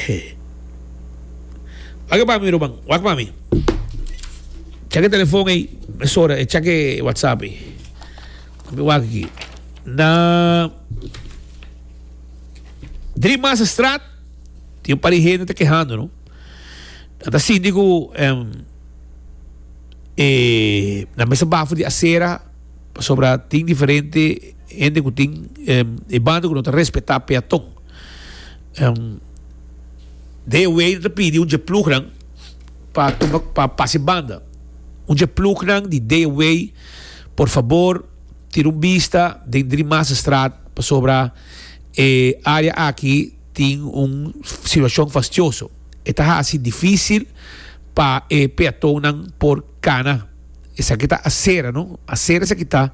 He. Wak e pa mi Ruben, wak pa mi. Chak e telefon ei, mesora e chak e whatsapp ei. Mi wak aki. Na Drie Massa Straat tin un par di hende ta kehando, no? Nan ta sinti ku em, e, nan mester bafo di asera pasobra tin diferente hende ku tin em, e banda ku no ta respetá peaton. Deo Wade ta pidi un dje plugnan pa tuma pa pasa e banda un dje plugnan di Deo Wade por fabor tira un bista den Drie Maasstraat pasobra e área aki tin un situashon fastioso e ta hasi difísil pa e peatonnan por Cana. Esaki ta Asera, no. Asera esaki ta.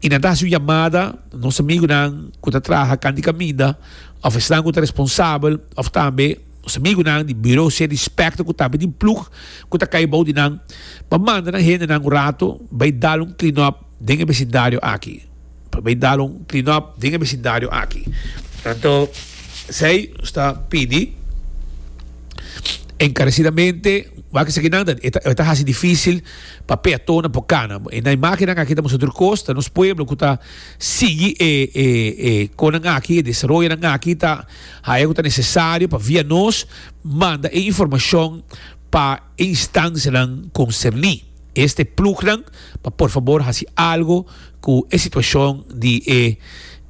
I nan ta hasi un yamada nos amigunan ku ta traha kan di kaminda òf esnan ku ta responsabel òf tambe nos amigunan di Bureau Sea di Specter ku tambe di plug ku ta kai bou di nan pa manda nan hendenan un rato bai dal un clean up den e besindario aki. pa bay dal un clean up den e vecindario aki anto esey ta pidi encarecidamente wak esaki nan ta e ta haci dificil pa peatonan por cana e nan e makinan aki ta mester tur cos ta nos pueblo cu ta sigui e conan aki e desaroyonan aki ta haya cu ta necesario pa via nos manda e informacion pa e instancianan concerni. este plugnan pa por fabor hasi algo cu e situacion di e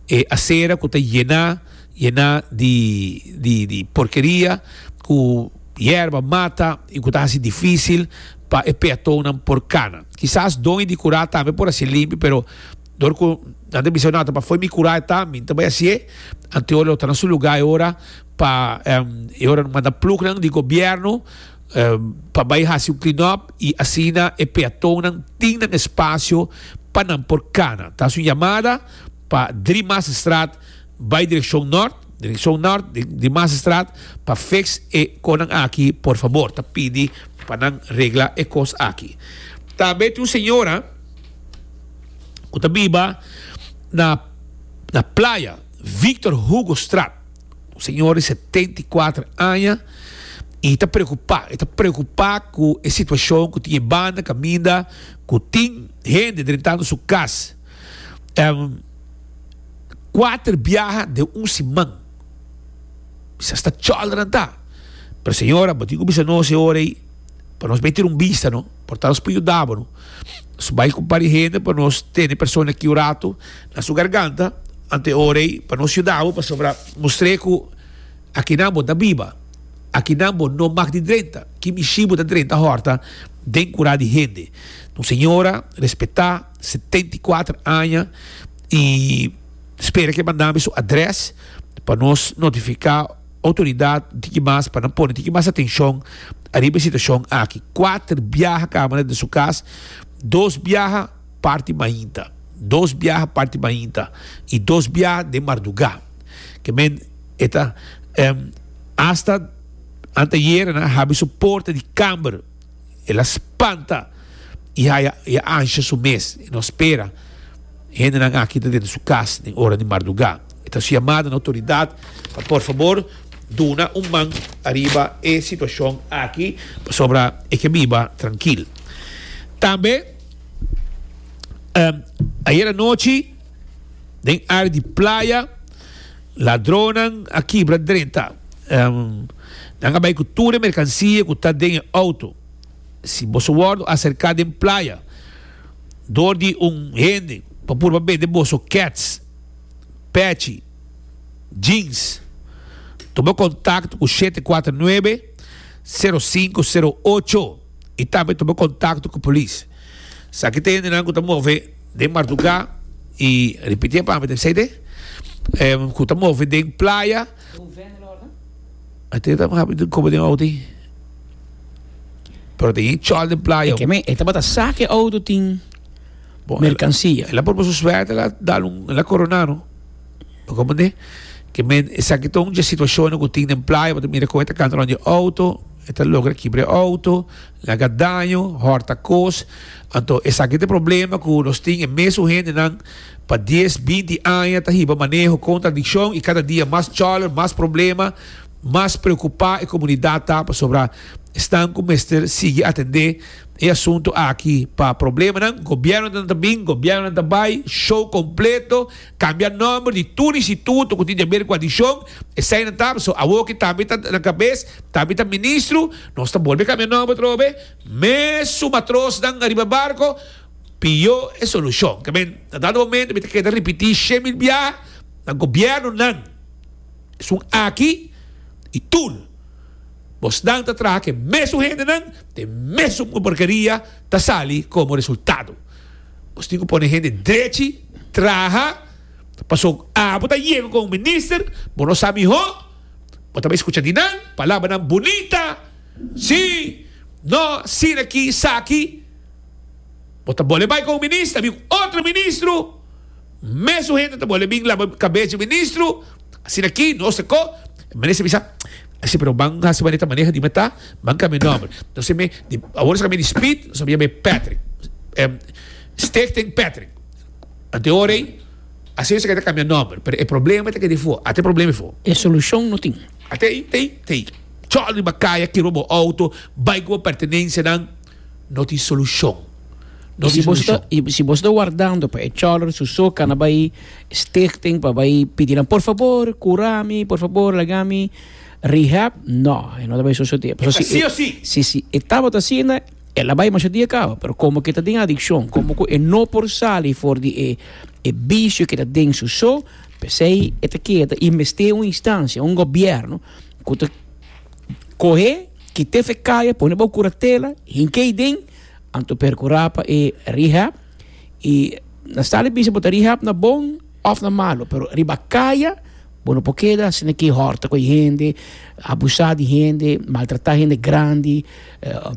e acera cu ta yena yena di di di porkeria cu yerba mata y cu ta hasi dificil pa e peatonnan por cana kisas doño di cura tambe por haci'e limpi pero dor cu nan ta bisa no ta fo'i mi cura eta mi ta bai haci'e anto lo ta na su lugar e ora pa e ora manda plugnan di gobierno pa bai hasi un klinòp i asina e peatonnan tin nan espasio pa nan por kana. Ta hasi un yamada pa Drie Maasstraat bai direkshon nòrt, direkshon nòrt di Drie Maasstraat pa fiks e konan aki por fabor. Ta pidi pa nan regla e kos aki. Ta habé tin un señora ku ta biba na Playa Victor Hugostraat. Un señor di setenta i kuater aña i ta preokupá. E ta preokupá ku e situashon ku tin e banda kaminda ku tin hende drentando su kas kuater biaha den un siman. Bisha sta chòlranan ta. Pero señor, abo tin ku bisa nos e ora ei pa nos bai tira un bista no. Por ta nos por yudabru. Nos bai ku pari hende pa nos tene persona ki oratu na su garganta ante e ora ei pa nos yuda bo pasobra mustr'e ku akinan bo ta biba, akinan bo no mak di drenta, ki mishi bo ta drenta hòrta den kura di hende. Un señora respetá, setenta i kuater aña i spera ke mandami su adrès pa nos notifiká. Outoridat tiki mas pa nan pone tiki mas atenshon ariba e situashon aki. Kuater biaha kaba nan den su kas, dos biaha parti mainta, dos biaha parti mainta i dos biaha den mardugá. Ke men e ta, Asta anteayera nan a habri su porta di kamber. El a spanta y haya y a ansha su mes. E no spera hendenan aki ta dentro su cas den ora di marduga. E ta haci yamada na autoridad pa por fabor duna un man ariba e situacion aki pasobra e ke biba trankil. Tambe ayer anochi den área di playa Ladronnan a kibra drenta. Nan a bai ku tur e merkansia ku ta den e outo. Si boso wòrdu aserká den playa dor di un hende pa purba bende boso kèts, pèchi, jeans, tuma kontakto ku shete kuater nuebe, sero sinku, sero ocho i tambe tuma kontakto ku polis. Esaki ta hendenan ku ta move. Den marduga y ripitié pa mi, Mercedes, em, cu ta move den playa, Mercedes ta habi den cobo den auto ahí. Pero tenía chol den playa. Oké, men, e tabata saca e auto tin Bon, mercancia. El a proba su suerte, el a dal un, el a corona, no? Pa comprende? Ke men, esaki ta un dje situacionnan cu tin den playa, bo ta mira con e ta canta londi e auto, e ta logra kibra e auto. Laga daño, hòrta kos. Anto esaki ta e problema ku nos tin e mes un hendenan pa dies, binti aña ta hiba maneho kontradikshon i kada dia mas chòler, mas problema, mas preokupá e komunidat ta pasobra esnan ku mester sigui atendé e asuntu aki. Pa problemanan, gobièrnunan ta bin, gobièrnunan ta bai, shou kompleto. Kambia nòmber di tur instituto ku tin di aber ku adishon, eseinan ta, so awo ke tambe ta na kabes, tambe ta ministro, nos ta bolbe kambia nòmber atrobe, mes su matrosnan ariba barko, pio e solushon. Ke men na dado momento mi ta keda ripití she mil biaha, na gobièrnunan esun aki i tur bosnan ta traha ke mesun hendenan, te mesun porkeria ta sali komo resultado. Nos tin cu pone hende drechi traha, pasobra cu abo ta yega con un minister, bo no sa miho, bo ta bay scucha di nan palabranan bunita, si, no, asina aki, sa aki, bo ta bole bay con un minister, a bin un otro ministro. Mesun hende ta bole bin laba kabes di ministro, asina aki nos ta ko. E minister bisa, Si pero ban hasi manera ta maneha dime ta, ban kambia e nomber. Nos a mi, awor nos a kambia di Speed, nos a yama e Patrick, Stichting Patrick. Anteor ei, asi nos a keda kambia nomber, pero e problema ta keda afo, ata e problema afo. E solucion no tin. Ata ei, ta ei, ta ei. Chol riba kaya, kero bo auto, bai ku bo pertenensianan. No tin solucion. No tin solucion. Y si boso ta wardando pa e cholera su soca na bay stichting pa bay pidi nan por favor cura mi, por favor laga mi rehab, no e no ta bay sosode. E ta si o si. Si si e tabata asina el a bay masha dia caba, pero como ke ta den adiccion, como cu e no por sali for di e e vicio ke ta den su so, pesey e ta keda y mester un instancia, un gobierno cu ta cohe Kite fe kaya pone bo kuratela hinkey den anto perkura pa e rehab i na stali bisa bo ta rehab na bon of na malo pero riba kaya bo no por keda asina ke horta ku e hende abusa di hende maltrata hende grandi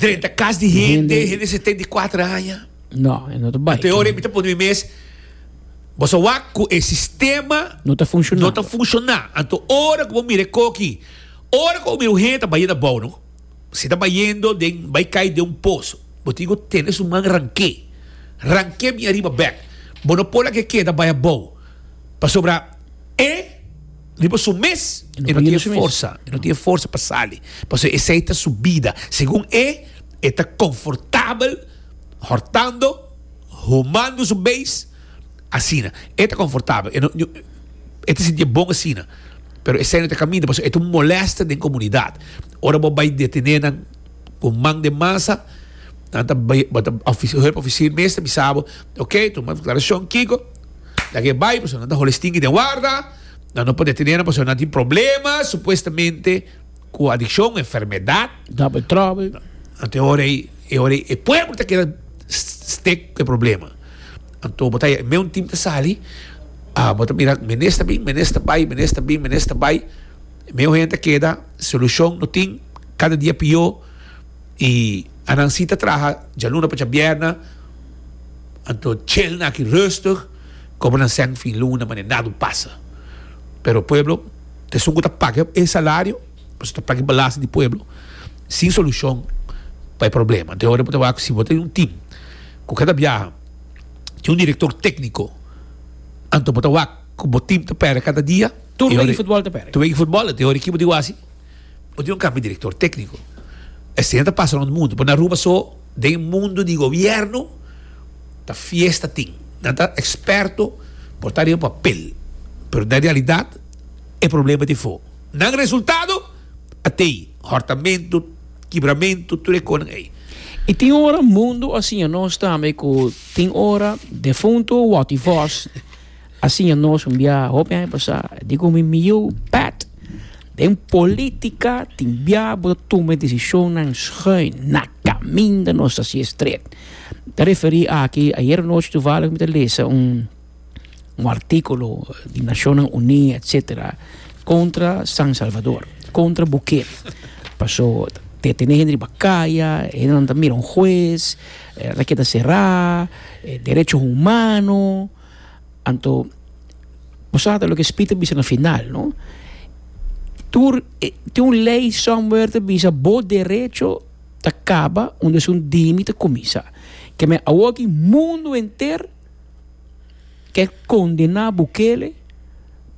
drenta kas di hende hende setenta i kuater aña no e no ta bai ante ora e mita pone mi mes boso a wak ku e sistema no ta funshoná anto ora ku bo mira e koki. Ora cu mi muher ta bayendo abao no, si ta bayendo den bay cay den un pozo, bo tin cu tene su man ranke, ranke mi ariba bek, bo no por lake keda bay abao, pasobra e riba su mes e no tin forsa, e no tin forsa pa sali, pasobra esey ta su bida, segun e, e ta confortabel hortando, humando su beest. asina. E ta konfortabel, e no e ta sintié bon asina. Pero esei no ta kaminda pasobra e ta un molèster den komunidat. Ora bo bai detené nan ku un man den masa, nan ta bai bo ta hèp ofisir mes ta bisa bo, Oke, tu manda deklarashon kiko, laga e bai pasobra nan ta holi stinki den warda, nan no por detené nan pasobra nan tin problema supuestamente. cu adiccion, enfermedad. Dap e trobe. Anto e ora ey, e ora ey e pueblo ta keda stick cu e problema. Anto bo ta haya e meun team ta sali, ah, bo ta mira menes ta bin, menes ta bay, menes ta bin, menes ta bay. E meun hende ta keda, solucion no tin, cada dia pio, y anan si ta traha djaluna pa djabierna, anto celna aki rustig, como nan seng fin luna, mane nada un pasa. Pero pueblo. Esun ku ta paga e salario pasobra ta paga belasting di pueblo sin solushon pa e problema. Enton e ora bo ta wak ku si bo ta den un tim ku kada biaha tin un direktor tekniko anto bo ta wak ku bo tim ta pèrdè kada dia. Tur wei di futbòl ta pèrdè. Tur wei di futbòl. Enton e ora ki bo ta wak si bo tin un kambio di direktor tekniko. Esei ta pasa rònt mundu. Pero na Aruba so den e mundu di gobièrnu ta fiesta tin. Nan ta eksperto por ta ariba papel pero na realidat. e problema di fo. Nan resultado a tei hortamentu, kibramentu, tur e konan ei. I tin ora mundu a siña nos tambe ku tin ora defuntu Watty Vos a siña nos un bia hopi aña pasá di ku mi mieu pèt den polítika tin bia bo ta tuma e desishonnan schuin na kaminda nos ta hasié stret. Mi ta referí aki, ayeranochi tuvallig mi ta lesa un. un artíkulo di Nashonnan Uní, etsetera, kontra San Salvador, kontra Bukele. Pasó ta e tene hende riba kaya, e hendenan ta mira un hues, e lata ke ta será, e derecho humano. Anto, bo sa ta loke Spit a bisa na final, no? Tur e, tin un lei somewhere ta bisa bo derecho ta kaba unda sun dimi ta kuminsá. Ke me, awor aki mundo henter. Ke kondena Bukele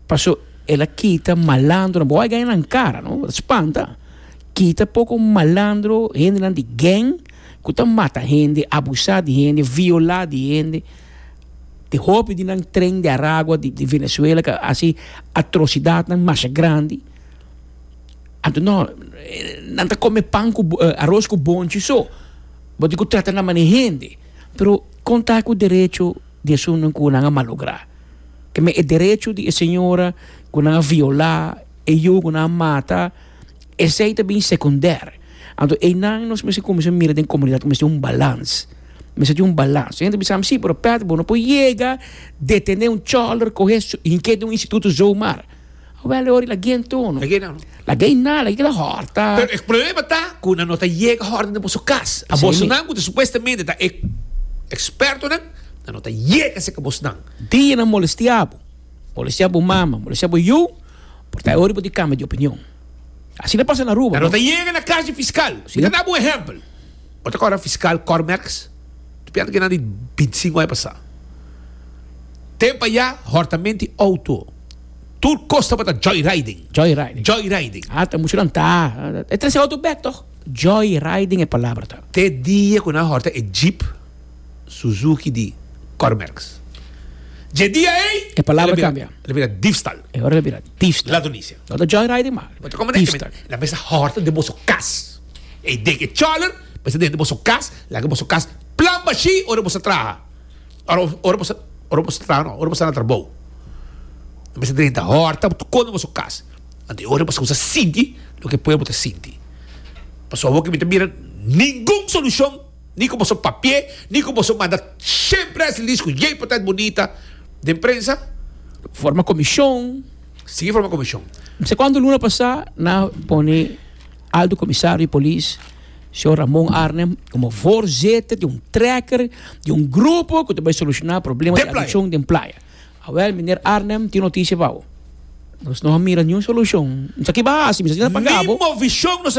paso el a kita malandronan, bo a gana nan kara no, ta spanta, kita poko malandro, hendenan di geng ku ta mata hende, abusa di hende, viola di hende, di hopi di nan tren di aragua di Venezuela ke a hasi atrosidatnan masha grandi, anto no, nan ta kome pan ku aros ku bonchi so, bo tin ku trata nan manera hende. Pero kon ta ku derecho di esuntu ku nan a malogra? Te me e derecho di e señora ku nan a viola, e yu ku nan a mata, esei ta bin sekundèr. Anto einan nos mester kuminsá mira den komunidat ku mester tin un balans, mester tin un balans. Hende ta bisa si, pero Pat bo no por yega detené un chòlder, kohe su, hinke den un instituto zomaar. Awel e ora la guien tono. La guien nada, kiko ta horta. Pero e problema ta cu nan no ta yega horta den boso cas. A bosonan cu ta supuestamente ta e expertonan, nan no ta yega cerca bosonan. Dia nan molestia bo, molestia bo mama, molestia bo yu, por ta e ora bo tin cambia di opinion. Asina ta pasa na Aruba. Nan no ta yega na cas di fiscal. Mi ta dabo un ehempel. Bo ta corda fiscal Cormerks? Mi ta piensa kinan di binti cinco aña pasa. Tempo aya hortamenti auto. Tur kos tabata joyriding. Joyriding. Joyriding. Ah, ta mucho nan ta. E tres e auto back toch? Joyriding e palabra ta. Te dia ku nan horta e jeep Suzuki di Cormerks. Dje dia ei. E palabra kambia. El a bira difstal. E ora el a bira difstal. Ladronisia. No ta joyriding mas. Bo ta kome den kemen. Difstal. Nan mester horta den boso kas. Ei den e chòler mester den boso kas. Laga boso kas plan bashe ora boso traha. Ora ora bo ora bo sta no ora bo sta na trabou bo mester drenta horta bo ta kono boso kas anto e ora bo kusa sinti loke pueblo ta sinti pasobra awor ke mi ta mira ningun solucion ni ku boso papie ni ku boso manda shen press release ku yey portant bunita den prensa forma komishon sigui forma komishon. Mester konta luna pasa na pone. Alto Comisario di Polis, Señor Ramon Arnhem, como voorzitter di un trekker di un grupo cu ta bay soluciona problemas di adiccion den playa. Awel, Meneer Arnhem, tin noticia pa bo. Nos no a mira niun solucion. Mi sa kiba haci, mi sa si na paga bo.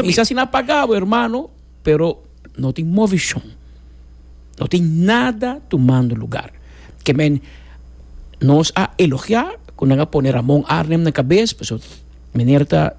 Mi sa si na paga bo, hermano, pero no tin movicion. No tin nada tumando lugar. Kemen nos a elogia cu nan a pone Ramon Arnhem na cabes pasobra meneer ta.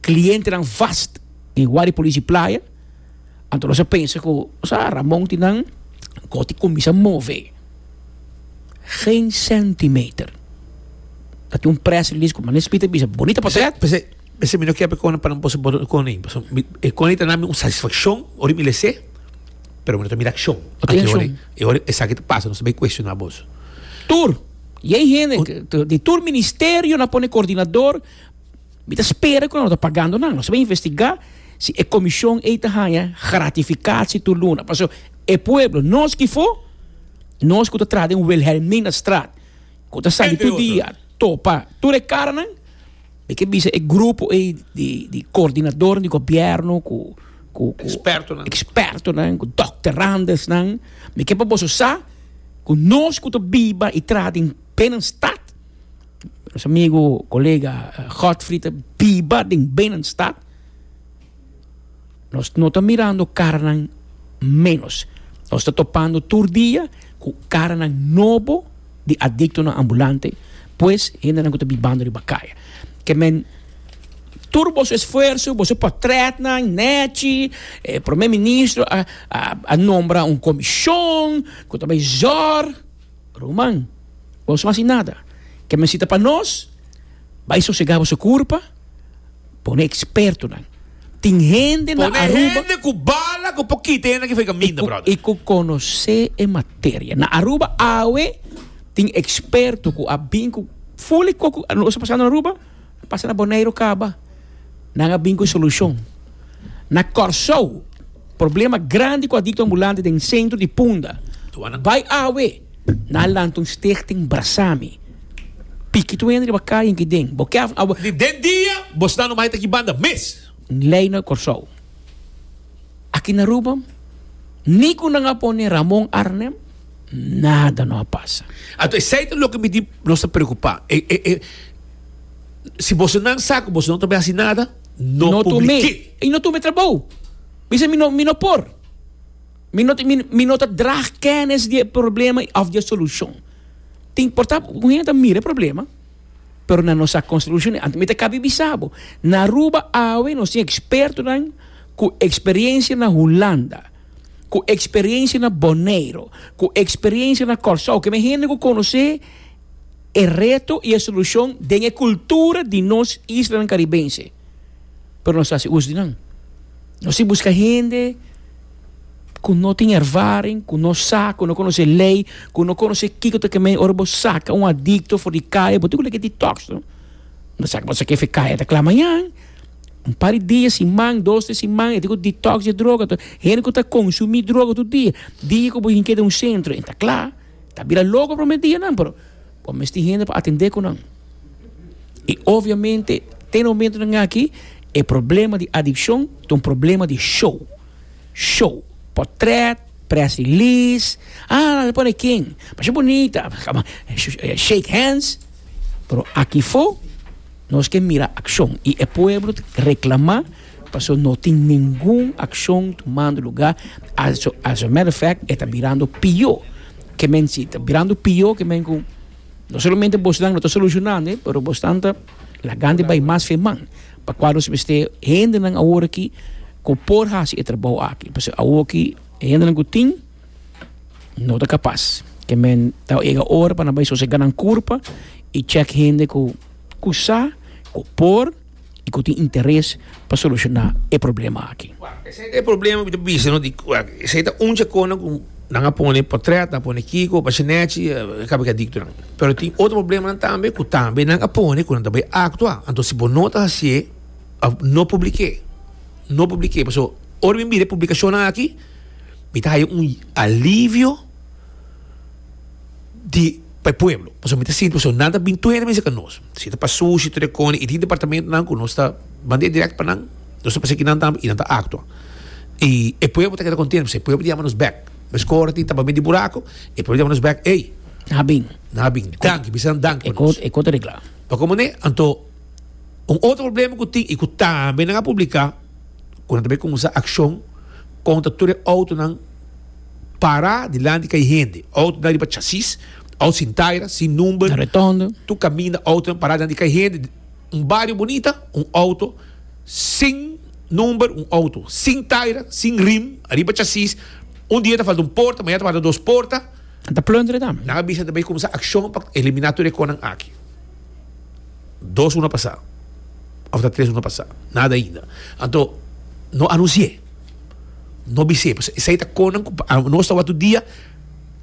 clientenan vast den Wari Polici Playa, anto nos a pensa cu sa Ramon tin nan goti cuminsa move. Geen centimeter. Ta tin un press release cu Manis Smith a bisa, bonita portret. P'esei, p'esei mi no kier Connie pa nan posa boda cu Connie, pasobra mi, e Connie ta nami un satisfaccion ora mi lese, pero mi no ta mira accion. No tin accion. Aki e ora esaki ta pasa, nos ta bay cuestiona boso. Tur, y hay hende, di tur ministerionan pone coordinador. Mi ta spera ku nan lo ta pagando nan. Nos a investigá si e komishon ei ta haña gratifikasi tur luna. Paso, e pueblo, nos ki for, nos ku ta traha den Wilhelminastraat, ku ta sali tur dia topa tur e karanan, mi ke bisa e grupo ei di koordinadornan di gobièrnu ku ekspertonan, ku dokterandersnan, mi ke pa boso sa ku nos ku ta biba i traha den Binnenstad, Nos amigo, colega Godfrey ta biba den binnenstad. Nos no ta mirando caranan menos. Nos ta topando tur dia cu caranan nobo di adictonan ambulante, pues hendenan cu ta bibando riba caye. Ke men, tur boso esfuerso, boso potretnan, nechi, e Prome Ministro a nombra un comishon cu ta bay zorg. Ruman, boso no hasi nada. Ke mester ta pa nos, bai sosegá boso kurpa, pone ekspertonan. Tin hende na Aruba. Pone hende ku bala ku por kita hende ki fai kaminda, bròder. I ku konosé e materia. Na Aruba awe tin eksperto ku a bin ku fuli ku nos a pasando na Aruba. Pasa na Boneiru kaba, nan a bin ku solushon. Na Kòrsou, problema grandi ku adikto ambulante den sentro di Punda. Bai awe, nan a lanta un stichting Brasami. Piki tuwena riba kaya en Kiden. Bo kè avun awe. Di den dia, bo sta no mai ta ki banda mes. Un lei na Kòrsou. Aki na Aruba, ni ku nan a pone Ramon Arnem, nada no a pasa. Anto esei ta loke mi di nos ta preokupá. E, e, e. Si bosonan sa ku boso no ta bin hasi nada, no publik'é. I no tum'é trabou. Mi sa mi no mi no por. Mi no mi no ta dra kenis di e problema òf di e solushon. Ta importa ku un hende ta mira e problema, pero nan no sa kon solushon'é. Anto mi ta kap'é bisa bo, na Aruba awe nos tin ekspertonan ku eksperiensia na Hulanda, ku eksperiensia na Boneiro, ku eksperiensia na Kòrsou, ke mi hende ku konos'é. e reto i e solushon den e kultura di nos islanan karibense, pero nos ta hasi us di nan. Nos tin buska hende ku no tin ervaring, ku no sa, ku no konosé lei, ku no konosé kiko ta kemei ora bo saka un adikto for di kaya, bo tin ku lei ke detox no. Bo sa ke bo sa ke fe kaya ta kla mañan, un par di dia, siman, dos, tres siman, e tin ku detox di e droga, hende ku ta konsumí droga tur dia, dia ku bo tin ke den un sentro e ta kla. Ta bira loko prome dianan pero bo misti hende pa atende cu nan. Y obviamente te momentonan aki e problema di adiccion ta un problema di show. Show, potret, press release, ah lo pone king, pasha bunita, shake hands, pero aki fo nos ke mira accion y e pueblo ta reclama. Paso no tin ningun akshon tumando lugá, as a matter of fact e ta birando pió ke men, si ta birando pió ke men ku no solamente bosnan no ta solushonánd'e pero bosnan ta lagand'e bai mas fe man, pa kua nos mester hendenan awor aki ku por hasi e trabou aki, paso awor aki e hendenan ku tin no ta kapas, ke men ta yega ora pa nan bai sosega nan kurpa i chèk hende ku kusá ku por. y cu tin interes pa soluciona e problema aki. Esey ta e problema cu mi ta bisa no di esey ta un dje cona cu nan a pone potret, nan a pone kiko, bashi nechi, e caba ki adictonan. Pero tin otro problemanan tambe cu tambe nan a pone cu nan ta bay actua. Anto si bo no ta haci'e no public'e, no public'e pasobra ora mi mira e publicacionnan aki mi ta haya un alivio di pa e pueblo pasobra mi ta sinti pasobra nan ta bin tuhedi mester ca nos si ta pa sushi tur e cona y tin departamentonan cu nos ta banda direct pa nan nos ta pasekinan tambe y nan ta actua y e pueblo ta keda contento pasobra e pueblo ta yama nos bek mesco ora tin tapa mi di buraco e pueblo ta yama nos bek ey nan a bin nan a bin danki bisa nan danki pa nos e cor ta regla pa con mane anto un otro problema cu tin y cu tambe nan a publica cu nan ta bay cuminsa accion contra tur e autonan. Pará dilanti kai hende. Outonan riba chasis, outo sin taira, sin number. Retondo. Tur kaminda outonan pará dilanti kai hende. Un bario bunita, un outo sin number, un outo sin taira, sin rim, ariba chasis. Un dia ta falta un porta, mañana ta falta dos porta. Nan ta plunderen tambe. Nan a bisa nan ta bai kuminsá akshon pa eliminá tur e konan aki. Dos luna pasá òf ta tres luna pasá. Nada ainda. Anto no anunsié. No bis'e pues esei ta konan ku nos ta wòrdu dia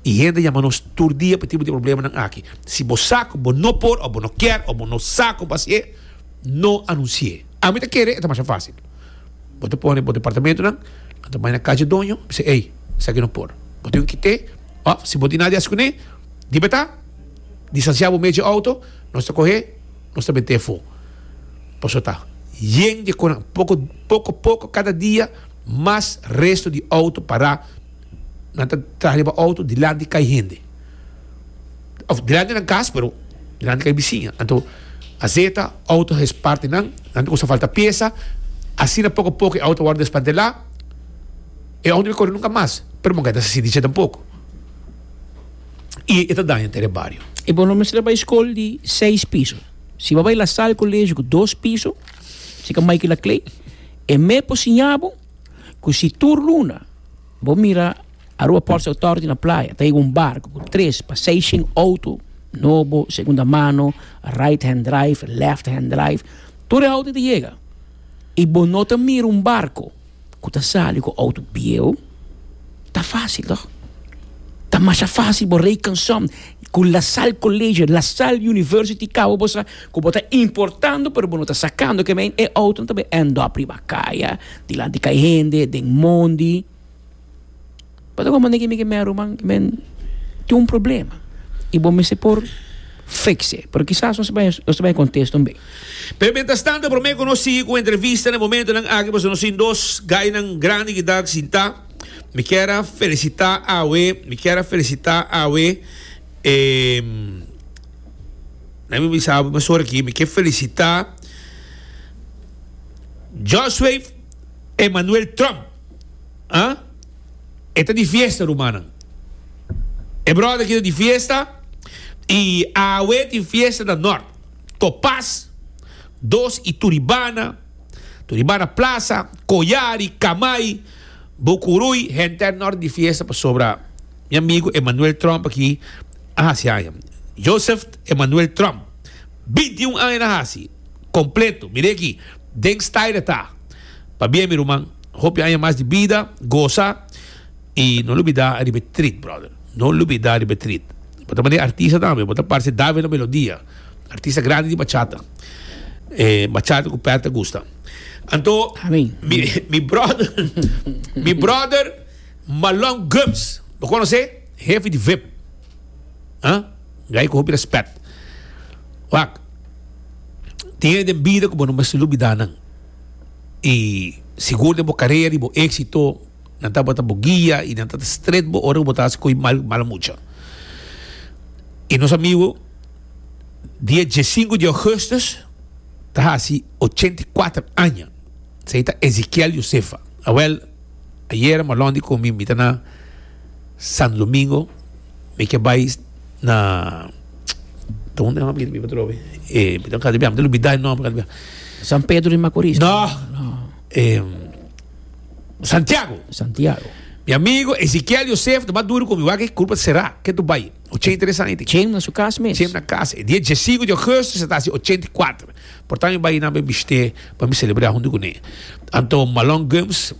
i hende ta yama nos tur dia pa e tipo di problemanan aki. Si bo sa ku bo no por òf bo no kier òf bo no sa kon fasié, no anunsié. Ami ta kere, e ta masha fásil. Bo ta pone bo departamentunan, nan ta bai na kachi doño i bisa, ei, esaki no por. Bo tin ku kité òf si bo tin nada di hasi kuné, di beta, distansiá bo mes dje outo, nos ta kohe, nos ta bent'é afó. Paso ta yen di konan. Poko poko poko kada dia mas resto di auto pará. Nan ta traha riba auto dilanti kai hende. Òf dilanti nan kas pero dilanti kai bisiña. Anto a zeta auto hes parti nan, nan ta kusa falta piesa. Asina poko poko e auto a wòrdu desmantelá. E auto no kore nunka mas pero manga e ta sisiti dje tampoko. I e ta daña entera e bario. I bo lo mester a bai skol di seis piso? Si bo bai La Salle Colegio cu dos piso, si ca Michael a Clay, e mes por siña bo cu si tur luna bo mira Aruba Ports Authority na playa ta yega un barco cu tres pa seis shen auto, nobo, segunda mano, right hand drive, left hand drive, tur e auto ta yega y bo no ta mira un barco. ku ta sali ku outo bieu ta fásil tok. Ta masha fásil bo rei kanson ku La Salle College, La Salle University Cabo bo sa ku bo ta importando pero bo no ta sakando ke men e outonan ta end up riba kaya dilanti kai hende den mondi. Pasobra bo manda ki mi ke mea ruman i men tin un problema i bo mester por fiks'e. Pero kisas nos ta bai nos ta bai kontes tambe. Pero mientrastan ta prome ku nos sigui ku entrevista na momentunan aki pasobra nos tin dos gainan grandi ki ta sintá. Mi kier a felisitá awe, mi kier a felisitá awe e na mi bisa bo masor aki mi ke felisitá Joswave Emmanuel Trump. e ta di fiesta rumannan. E bròda aki ta di fiesta i awe tin fiesta na nòrt, Copas, dos i Turibana, Turibana Plaza, Coyari, Camay, Bucuruy. Henter nòrt di fiesta pasobra mi amigu Emmanuel Trump aki a hasi aña. Joseph Emmanuel Trump, binti i un aña na hasi kompletu. Mir'e aki den Stayra ta pabia mi ruman. Hopi aña mas di bida, gosa y no lubida riba e treat brother, no lubida riba e treat. Bo ta mane artista tambe, bo ta parce David La Melodia, artista grandi di bachata, e bachata cu per ta gusta. Anto mi brother, mi brother Malong Gums, bo conoce? Hefe di vip, ah, guy cu hopi respect. Wak, tin e den bida cu bo no mester lubida nan. y sigur den bo carera di bo exito nan tabata bo guia y nan ta stret bo ora cu bo ta haci coy mal mala mucha y nos amigo dia die sinku di augustus ta haci ochenta y cuater aña esey ta Ezikiel Josefa awel ayera malon di con mi mi ta na Santo Domingo mi ke bay na donde nan a bira biba atrobe eh mi ta casi bia mi ta lubida e nomber casi bia San Pedro de Macorís no eh Santiago Santiago mi amigo Ezequiel Joseph ta mas duro con mi wak e curva cerrá que tu bai 83 años tin chem na su cas mes chem na cas e dia 5 de augustus e ta haci 84 por tanto mi bai nan pa e bishte pa mi celebra hunto cune anto Malone Gumbs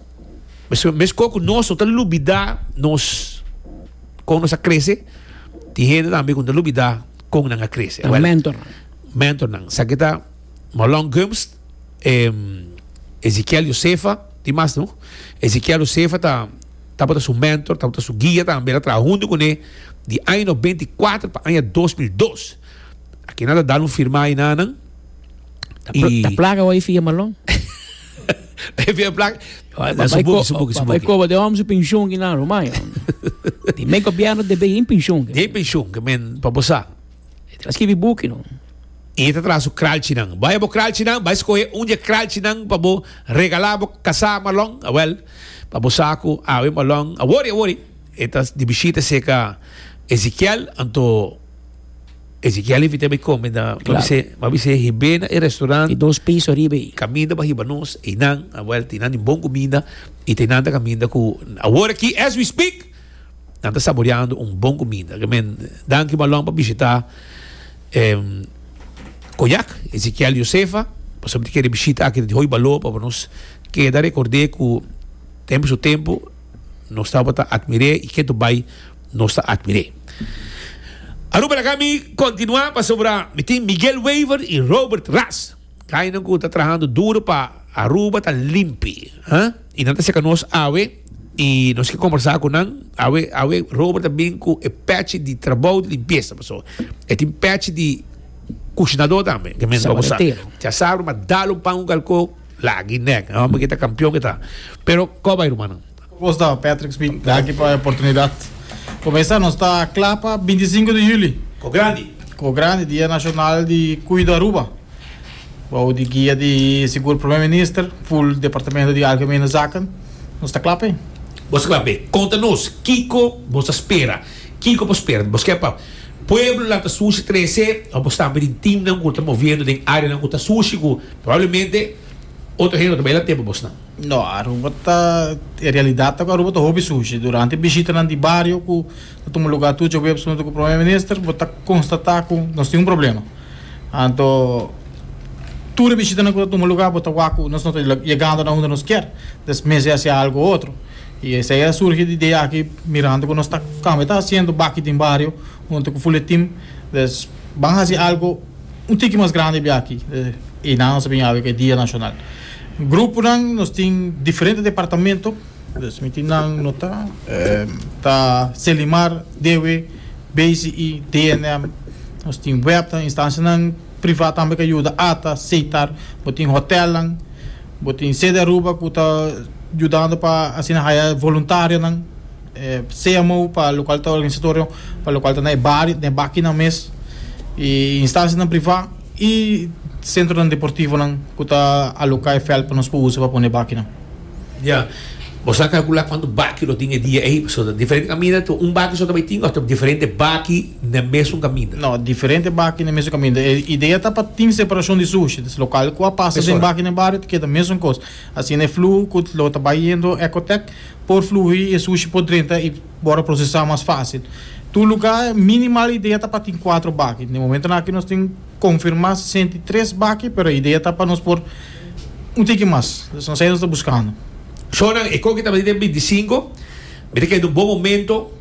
Mes kos ku nos no ta lubidá nos kon nos a krese, tin hende tambe ku no ta lubidá kon nan a krese. Nan mentor. Mentor nan. Esaki ta Mahlon Gumbs, Ezekiel Josefa, tin mas no. Ezekiel Josefa ta tabata su mentor, tabata su guia tambe. El a traha huntu kuné di aña no benti i kuater pa aña dos mil dos. Aki nan ta dal un firmá ayina nan. Ta plaga hoy fi e Mahlon. Even plan. Su buki, su buki, su buki. Koba de om su pensioen ki na Romayo. Di men gobierno de be in pensioen. De in pensioen ke men pa bosa. Tra skibi buki no. E ta tra su kralchi nan. Bai bo kralchi nan, bai skohe un je kralchi nan pa bo regala bo kasa malon. Awel, pa bo sa ku awe malon. Awori, awori. E ta di bishita seka Ezikiel anto. Ezekiel a invit'é bai kome na Kla. M'a bis'é, m'a bis'é hib'é na e restaurant. I dos piso riba ei. Kaminda pa hiba nos, einan a wèlta i nan tin bon kuminda i te nan ta kaminda ku awor aki as we speak nan ta saboreando un bon kuminda. Ke men, danki Malong pa bishitá e Koyak, Ezekiel i Josefa, pasobra ti kere bishita aki ta di hoy baló pa por nos keda rekord'é ku tempu su tempu, nos tabata atmir'é i ketu bai nos ta atmir'é. Aruba laga mi kontinuá pasobra mi tin Miguel Wever i Robert Ras, kainan ku ta trahando duru pa Aruba ta limpi, ha? I nan ta seka nos awe i nos ke kombersá ku nan. Awe awe Robert ta bin ku e pèchi di trabou di limpiesa, paso e tin pèchi di kushinadó tambe, ke men tabata usá. Sabatier. Dja sabru, ma dal un pan ku kalkó. Lagi nek, e homber ki ta campeon ki ta. Pero cua bay rumannan? Cu bos ta, Patrick Smith? Danki pa e oportunidad. Pa mesa nos ta cla pa binti sinku di juli. Cu grandi. Cu grandi, Dia Nacional di Cuida Aruba. Bou di guia di sigur Primer Minister, full Departamento di Algemene Zaken, nos ta cla p'e. Bos ta cla p'e. Conta nos kico bos ta spera. Kico bo spera? Bos kier pa pueblonan ta sushi trece of bo stampa den teamnan cu ta moviendo den areanan cu ta sushi cu. Probablemente otro hende no ta bai la tempo bosnan. No, Aruba ta, e realidad ta cu Aruba ta hopi sushi. Durante bishitanan di bario cu ta tuma lugar tur djobeps hunto cu Promer Minister, bo ta constata cu nos tin un problema. Anto, tur e bishitanan cu ta tuma lugar bo ta wak cu nos no ta yegando na unda nos kier, entonces mester haci algo o otro. Y esey a surgi di idea aki mirando cu nos ta camba e ta haciendo baki den bario hunto cu Fuletim, entonces ban haci algo. Un tiki mas grandi bia aki e nan nos a bin abi ku e dia nashonal. Gruponan nos tin diferente departamento, dus mi tin nan no ta ta Selimar, Dewe, BCI, DNM, nos tin webnan, instansianan privat tambe ku a yuda ata seitar, bo tin hotelnan, bo tin CDAruba ku ta yudando pa asina haya voluntarionan. CMO pa lokual ta organisatorio pa lokual ta na e bario na e bakinan mes i instansianan privá i sentronan deportivonan ku ta aloká e vèlt pa nos por usa pa pone e bakinan. Ya. Bo sa kalkulá kuantu baki lo tin e dia ei? Pasobra ta diferente kaminda. Ta un baki so ta bai tin òf ta diferente baki na mesun kaminda? No, diferente baki na mesun kaminda. E idea ta pa tin separashon di sushi. Lokual ku a pasa den baki na e bario ta keda mesun kos. Asina e fluhu cu lo ta bay yendo Ecotec por fluhi y e sushi por drenta y por procesa mas facil. Tur luga minimal idea ta pa tin cuatro baki. Den momentonan aki nos tin confirma sesenta y tres baki pero idea ta pa nos por un tiki mas. Nos ta haciendo nos ta buscando. Shownan e coki tabata den binti sinco, mi ta keda un bon momento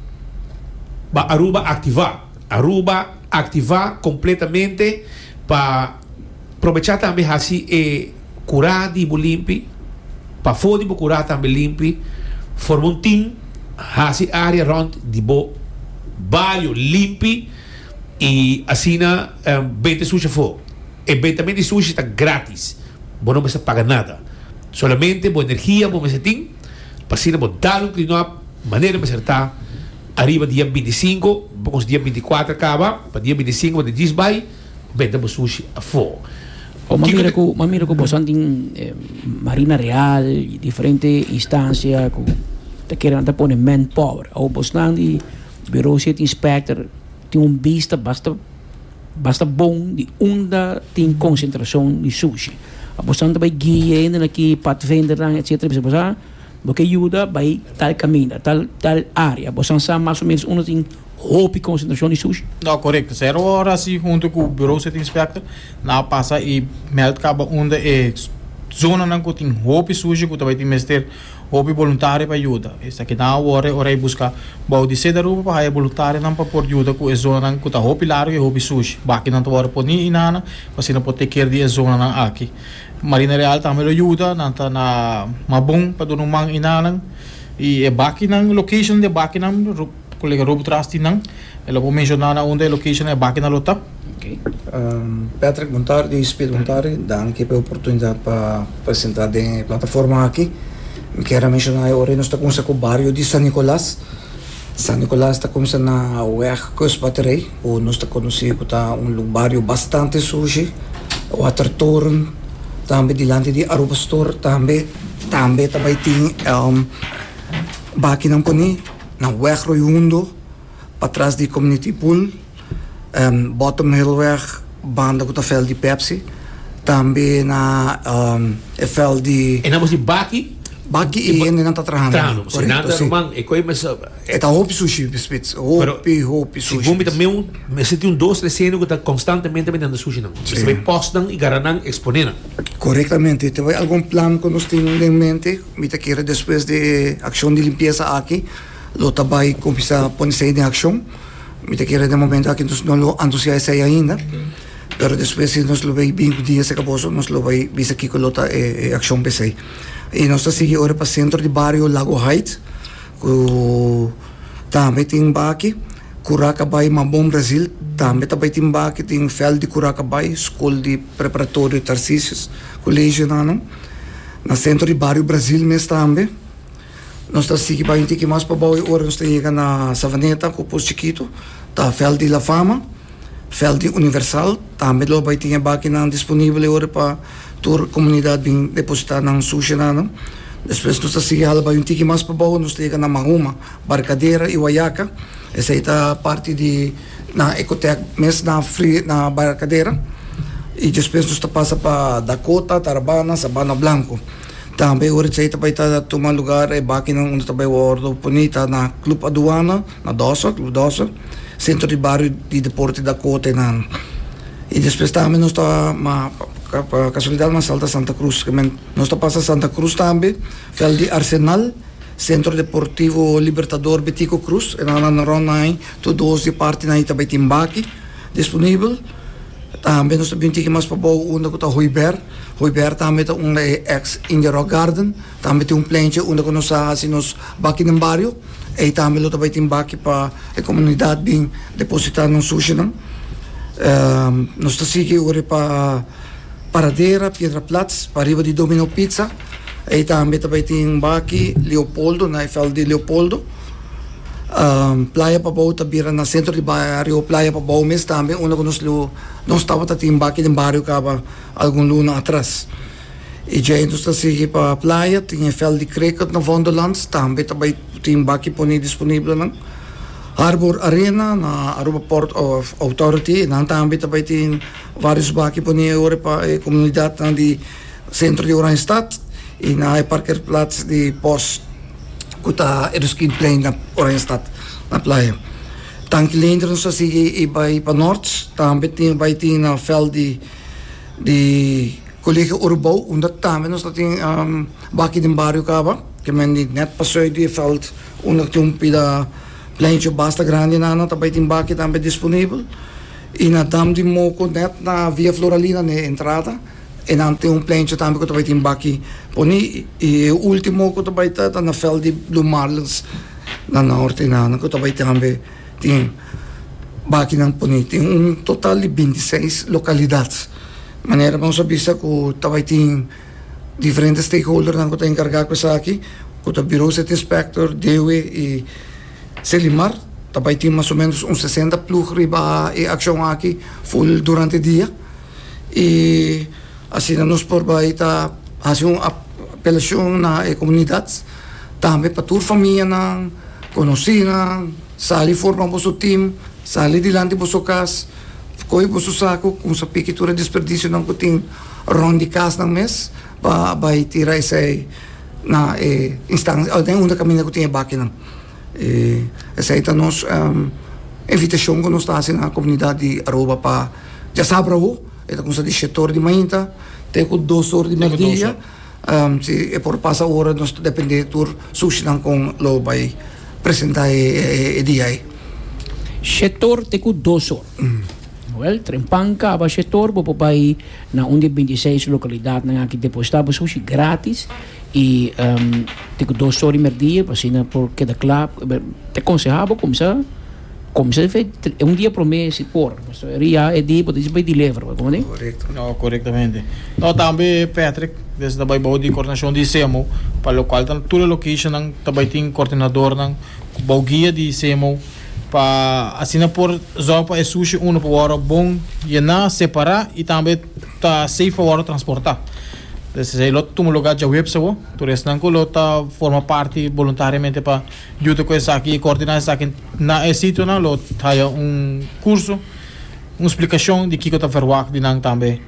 pa Aruba activa. Aruba activa completamente pa. Probechá tambe hasi e kurá di bo limpi pafó di bo kurá tambe limpi. Forma un tim, hasi área rònt di bo bayo limpi i asina beta e sushi afó. E betamen di sushi ta grátis, bo no mester paga nada. Solamente bo energia bo mester tin pa asina bo dal un klinòp manera mester ta. Ariba dia binti i sinku, bos dia binti i kuater kaba, pa dia binti i sinku bo ta djis bai. Benda bo sushi afó. Bo m'a mira ku, m'a mira ku bosan tin Marina Real i diferente instancia ku ta kere nan ta pone manpower. Awo bosnan di Bureau City Inspector tin un bista basta basta bon di unda tin konsentrashon di sushi. Bosan ta bai guia hende nan ki padvendernan etsetera i bisa bosan bo ke yuda bai tal kaminda, tal tal área. Bosan sa mas o menos unda tin. hopi konsentrashon di sushi. No, korekto. Sero ora si huntu ku Bureau City Inspector nan a pasa i mèld kaba unda e zonanan ku tin hopi sushi ku ta bai tin mester hopi boluntario pa yuda. Esaki nan a wòrde ora e buska bou di Sedaruba pa haya boluntarionan pa por yuda ku e zonanan ku ta hopi largu i hopi sushi. Baki nan ta wòrdu poní inana pa asina por take care di e zonanan aki. Marina Real tambe lo yuda, nan ta na Mabon pa duna un man inana i e bakinan, locationnan di e bakinan. Colega Rob tras di nan. E lo por menciona na unda e locationnan e bakina lo ta. Patrick Bontari di Speed Bontari, danki pa e oportunidad pa presenta den e plataforma aki. Mi kier a menciona e ora nos ta cuminsa cu bario di San Nicolas. San Nicolas ta cuminsa na weg Kustbatterij cu nos ta conoci cu ta un bario bastante sushi, Watertoren, tambe dilanti di Aruba Store tambe, tambe ta bay tin bakinan poni. na Wegroei Hundo, patras di Community Pool, Bottom Hillweg banda ku ta vèlt di Pepsi, tambe na e vèlt di. E naman si Baki. Baki i hende nan ta trahando. Trahando. Si nan ta ruman e koe mester. E ta hopi sushi spits, hopi hopi sushi. Sigun mi ta meu mester tin un dos tres hende ku ta konstantemente bendendo sushi nan. Mester bai pòstnan i garanan eksponenan. Korektamente. Te bai algun plan ku nos tin den mente? Mi ta kere despues di e akshon di limpiesa aki lo ta bai kuminsá pone sei den akshon. Mi ta kere den momentu aki nos no lo anunsiá esei ainda, pero despues si nos lo bai bin ku dia seka boso nos lo bai bisa kiko lo ta e akshon p'esei. I nos ta sigui ora pa sentro di bario Lago Heights ku tambe tin baki, Kuraka Bai Mambon Brazil tambe ta bai tin baki, tin Veld di Kuraka Bai, Skol di Preparatorio Tarcisius, Kolegio nan. Na sentro di bario Brasil mes tambe. Nos ta sigui baña un tiki mas pabou e ora nos ta yega na Savaneta cu Pus Chikitu ta Veld di La Fama, Veld di Universal. Tambe lo bai tin e bakinan disponible ora pa tur comunidad bin deposita nan sushianan. Despues nos ta sigui hala baña un tiki mas pabou nos ta yega na Mahuma. Barcadera y Wayaca. Esey ta parti di nan Ecotech mes na na Barcadera. Y despues nos ta pasa pa Dakota, Tarabana, Sabana Blanco. Tambe ora esey ta bay ta tuma lugar e bakinan unda ta bay wordo poni ta na Club Aduana, na Dossa, Club Dossa, Centro di Bario di Deporte Dakota y nan. Y despues tambe nos ta ma pa casualidad mas salta Santa Cruz. Nos ta pasa Santa Cruz tambe, vel di Arsenal. Centro Deportivo Libertador Betico Cruz e nan randa rond nai tur dos di e parti nai ta bai tin baki disponibel tambe nos ta bin tiki mas pabou unda ku ta Hoiber Hoiber tambe ta un e ex India Rock Garden tambe tin un plenchi unda ku nos a hasi nos baki den bario ei tambe lo ta bai tin baki pa e komunidat bin depositá nos sushinan nos ta sigui ora pa Paradera Piedra Platz pariba di Domino Pizza. Ei tambe ta bai tin Baki, Leopoldo, na e veld di Leopoldo. Playa pa bou ta bira na sentro di bario Playa pa bou mes tambe unda ku nos lo nos tabata tin Baki den bario kaba algun luna atras. I djei nos ta sigui pa playa tin e veld di Krekert na Vondelans tambe ta bai tin Baki pone disponiblenan. Harbor Arena na Aruba Port Authority nan tambe ta bai tin varios Baki pone ora pa e komunidatnan di. Sentro di Oranjestad y na e parkerplaats di pos cu ta e Ruskinplein na Oranjestad na Playa. Tanki lenter nos a sigui y bay pa Noord tambe tin bay tin na veld di di Colegio Urubou unda tambe nos ta tin baki den bario caba ke men di net pa zuid di e veld unda cu tin un pida pleincho basta grandi nana ta bay tin baki tambe disponibel y na Dam di Moco net na Via Floralina na e entrada. E nan tin un plencha tambe ku ta bai tin baki poni i e ultimo ku ta bai ta ta na veld di Blue Marlins na Norte i nan ku ta bai tambe tin bakinan poni. Tin un total di binti i seis lokalidat manera nos a bisa ku ta bai tin diferente stakeholdernan ku ta enkargá ku esaki ku ta Bureau City Inspector, DEWE i Selimar. Ta bai tin mas o menos un sesenta plug riba e akshon aki full durante dia. i asina nos por bai ta hasi un apelashon na e komunidat tambe pa tur famianan, konosinan, sali forma boso tim, sali dilanti boso kas, koge boso saku ku sa piki tur e desperdisionan ku tin rònt di kasnan mes pa bai tira esei na e instans den unda kaminda ku tin e bakinan. E esei ta nos invitashon ku nos ta hasi na komunidat di Aruba pa dja sa abrahu, e ta kumsa di shet or di mainta te ku dos or di mèrdia, si e por pasa ora nos ta dependé tur sushinan kon lo bai presentá e dia ei. Shet or te ku dos or. Wèl, trempan kaba shet or bo por bai na un di e binti seis lokalidatnan aki depositá bo sushi grátis. Y tin cu dos story mer dia pa asina por keda cla. Ta conseha bo cuminsa cuminsa fe un dia prome si por pasobra eri ya e dia bo ta dici bay deliver bo komo di. No corectamente no tambe Patrick des ta bay bao di coordinacion di Semo pa lo cual tan tur e locationnan ta bay tin coordinadornan cu bao guia di Semo pa asina por zorg pa e sushi uno pa wor bon yena separa y tambe ta safe pa wor transporta. Despues ei lo tuma lugar djaweps awo. Tur esnan ku lo ta forma parti boluntariamente pa yuda ku esaki i koordiná esaki na e sitionan lo haya un kurso, un splikashon di kiko ta verwagt di nan tambe.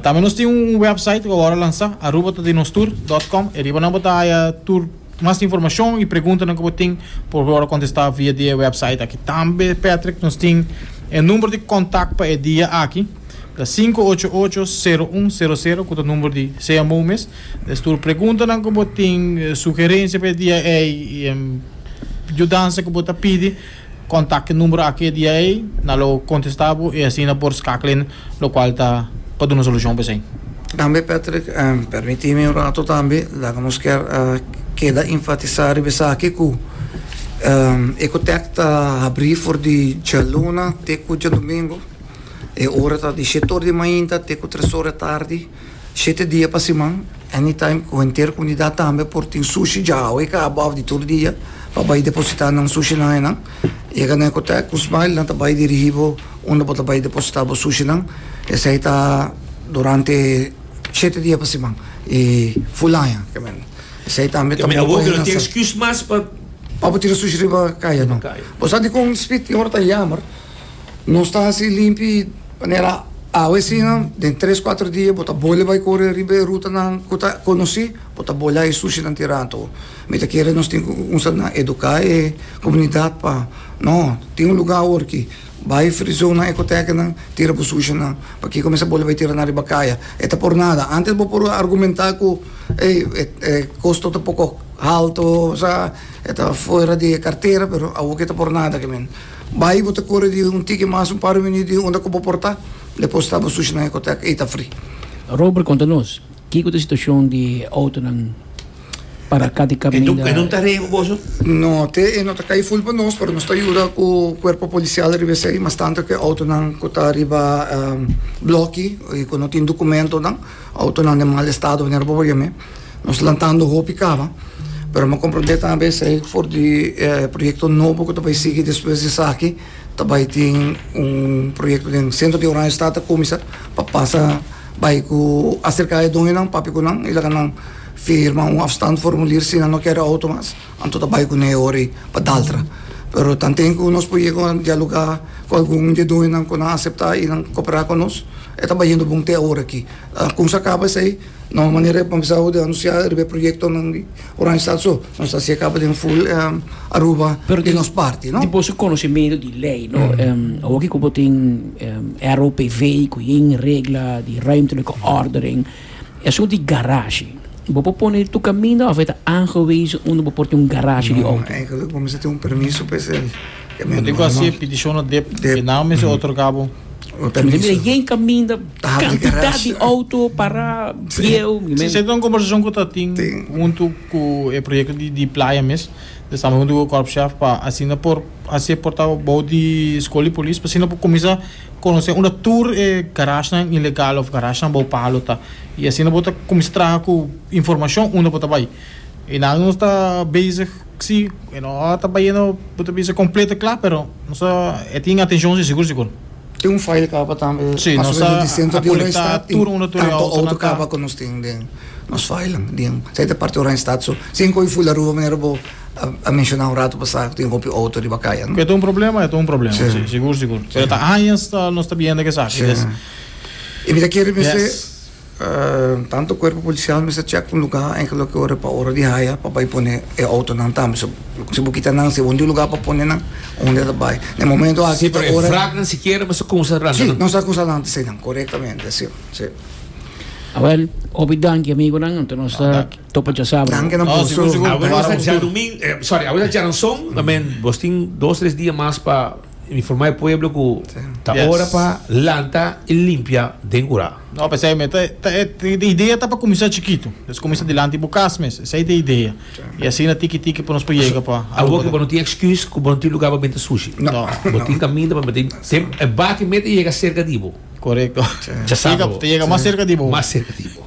Tambe nos tin un wèpsait ku awor a lansá, arubatadinostour dòt kòm. E riba nan bo ta haya tur. Mas informashon i preguntanan ku bo tin por bo wòrdu kontestá via di e wèpsait aki. Tambe, Patrick, nos tin e number di kontak pa e dia aki, ta sinku ocho ocho, sero un sero sero, ku ta number di CMO mes. Stuur preguntanan ku bo tin, sugerensia pa e dia ei, yudansa ku bo ta pidi, Kontak e numero aki e dia ei, nan lo kontestá bo i asina por skakla e lokual ta pa duna solushon pa esei. Tambe Patrick, pèrmití mi un ratu tambe, laga nos kier keda infatisá riba esaki ku Ecotech ta habrí for di djaluna te ku djadumingu, e ora ta di shet ora di mainta te ku tres ora e tardi. Shete dia pa siman, Anytime cu henter comunidad tambe por tin sushi dja awe i caba of di tur dia pa bay deposita nan sushinan enan. Yega na Ecotec cu Smile, nan ta bay dirigi bo unda bo ta bay deposita bo sushinan. Esey ta durante shete dia pa siman i full aña. Esey tambe ta bon pa hende nan sa. Pa bo tira sushi riba caya, no. Bo sa di con Speed tin ora ta yamer. Nos ta hasi limpi manera awe asina den tres kuater dia bo ta bole bai kore riba e rutanan ku ta konosí, bo ta bole a e sushinan tira anto. Mi ta kere nos tin ku kumsa na eduká e komunidat pa no tin un lugá awor ki bai frizon na ekotekenan tira bo sushinan pakiko mester bole bai tira nan riba kaya e ta por nada. Antes bo por argumentá ku ey e kosto ta pokok halto sa e ta fuera di e kartera pero awor ke ta por nada kimin. Bai bo ta kore di un tiki mas un par minüt di unda ku bo por ta, depòs ta bo sushi na Hecoteca, ei ta fri. Robert konta nos, kiko ta situashon di outonan para aká di kaminda? E no ta rei ku boso? No, te e no ta kai ful pa nos, pero nos ta yuda ku kuerpo polisial riba esei, mas tantu ku e outonan ku ta riba blòki i ku no tin dukumentonan, outonan den mal estado, manera bo por yam'é. Nos lantando hopi caba, pero me comprende tambe esey for di e proyecto nobo cu ta bay sigui despues di esaki, ta bay tin un proyecto den centro di Oranjestad ta cuminsa pa pasa bay cu acerca e doñonan papia cu nan y laga nan firma un afstandformulier si nan no ker e auto mas, anto ta bay cu nan e ora ey pa Daltra. Pero tan tin cu nos por yega a dialoga cu algun di e doñonan cu nan acepta y nan copera cu nos, e ta bay yendo bon te aworaki. Con sa caba esey. Na un manera e comenzá cu di anunciá riba e proyectonan di Oranjestad so, nos ta hací e caba den full Aruba di nos parti, no? Dipos cu conociemento di ley, no? Awoki cu bo tin ROPV cu yin regla di ruimtelijke ordening, esun di garage, bo por pone tur caminda of e ta aangewezen unda bo por tin un garage di auto? No, eigenlijk bo mester tin un permiso pa esei. Bo tin ku hasi e petishon na dep e nao mes e otorgá bo? También yen kaminda kantidat di outo pará bieu. Esei ta un kombersashon ku ta tin huntu ku e proyekto di playa mes. Ta staba huntu ku Kòrpshaaf pa asina por hasi e porta bou di skol di polis pa asina por kuminsá konosé unda tur e garashnan ilegal òf garashnan bou palu ta. I asina bo ta kuminsá traha ku informashon unda bo ta bai. E nan nos ta bezig. Si, e no ta bayendo bo ta bisa completo e cla, pero nos ta e tin atencion si sigur sigur. Tin un file caba tambe mas o menos di centro di Oranjestad y tanto auto caba cu nos tin den nos filenan di esai ta parti Oranjestad so sin coge full Aruba manera bo a menciona un rato pasado cu tin hopi auto riba caya no. Cu e ta un problema e ta un problema si sigur sigur pero ta añas nos ta biendo cu esaki. Y mi ta kere mester. Tanto cuerpo policial mester check un lugar en que loke ora pa ora di haya pa bay pone e autonan tambe so si bo kita nan si bo no tin lugar pa pone nan unda e ta bay na e momento aki ta ora Vrat nan sikiera bo sa cusa ranta si nan. nos ta cusa ranta si nan corectamente si si. Awel hopi danki amigonan anto nos ta topa djasabra Danki nan por su Awel nos ta djanumin sorry awel ta djaranson ta men bos tin dos tres dia mas pa Informa e pueblo cu ta Yes. ora pa lanta y limpia den cura. No, p'esei mi e ta, ta e, e idea ta pa cuminsa chikitu. Des cuminsa dilanti di bo cas mes. Esei ta e idea. Y asina tiki tiki por nos por yega pa Awor Aruba cu bo no tambe. tin excuse cu bo no tin lugar pa benta sushi. No. Bo tin caminda pa benta. Tem- E baki mes ta yega cerca di bo. Correcto. Chasabra Yega, bo. ta yega mas cerca di bo. Mas cerca di bo.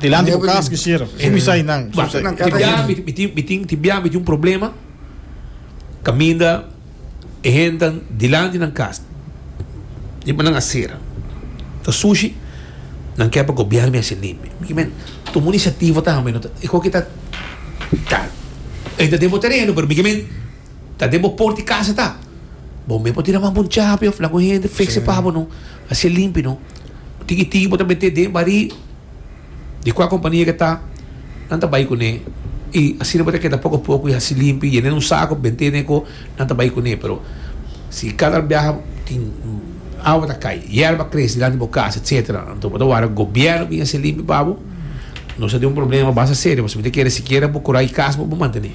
Dilanti bo kas ku sheriff. Su mi sai nan. Su sai. Ti biaha mi tin mi tin ti biaha mi tin un problema kaminda e hendenan dilanti nan kas di bo nan a sera ta sushi nan ke pa gobièrnu mi a hasi limpio mi kimen tuma un inisiativa ta hami no ta e koke ta ta e ta den bo tereno pero mi kimen Ta den bo por di casa ta. Bo mes por tira mas bon chapi of la cu hende fixse pa bo no. Hace limpi no. Tiki tiki bo ta mete den bari di cua compania ke ta nan ta bay cune y asina bo ta keda poco poco y haci limpi yena den un saco of bente den eco nan ta bay cune pero si cada biaha tin awa ta cay yerba ta crece dilanti bo casa etcetera anto bo ta wara gobierno a bin haci limpi pa bo nos ta den un problema basta serio pasobra mi ta kere sikiera bo curai casa bo bo mantene.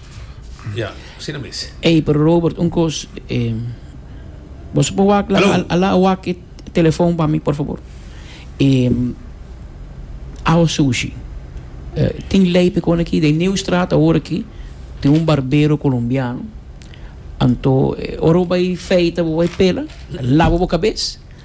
Ey, pero Robert, un cos, eh, bo su por wak la, a la wak e telefoon pa mi, por fabor. Eh, awa sushi. Eh, tin ley pe con aki, den Nieuwstraat awor aki, tin un barbero colombiano, anto, eh, ora bo bay feita, bo bay pela, laba bo cabes.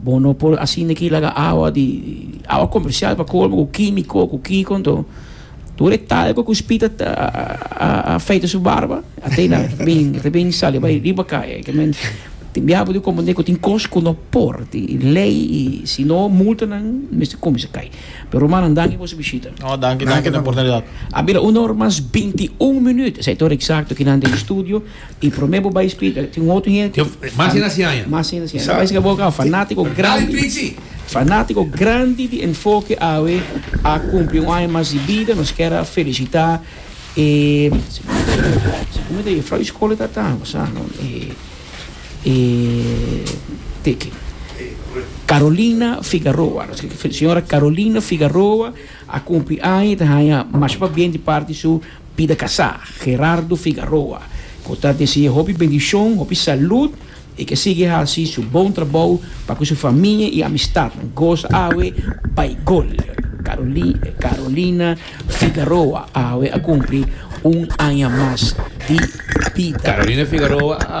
Bo no por asina aki laga awa di awa comercial pa colmo cu quimico cu kico enton tur e talco cu spita ta a afeita su barba atenda ta bin ta bin sali bai riba caya y ta men tin bia bo di comprende cu tin cos cu no por tin ley y si no multanan mester cuminsa cay pero Romana nan danki por su bishita. No danki danki na oportunidad. A bira una ora mas binti un minuut esey ta ora exacto ki nan den studio. Y prome bo bay speaker tin otro hende. Mas den a si aña. Mas den a si aña. Bo bay siga bo aca fanatico grandi. Fanatico grandi di Enfoke awe a cumpli un aña mas di bida. Nos kier a felicita e como ta juffrouw y school ta ta sa no e teke Carolina Figaroa. Señora Carolina Figaroa a cumpli aña y ta haya masha pa bien di parte su. Pida kasá, Gerardo Figaroa, ku ta desea hopi bendishon, hopi salud i ke sigui hasi su bon trabou pa ku su famia i amistatnan gosa awe bai gol. Carolina Figaroa awe a kumpli un aña mas di bida. Carolina Figaroa a.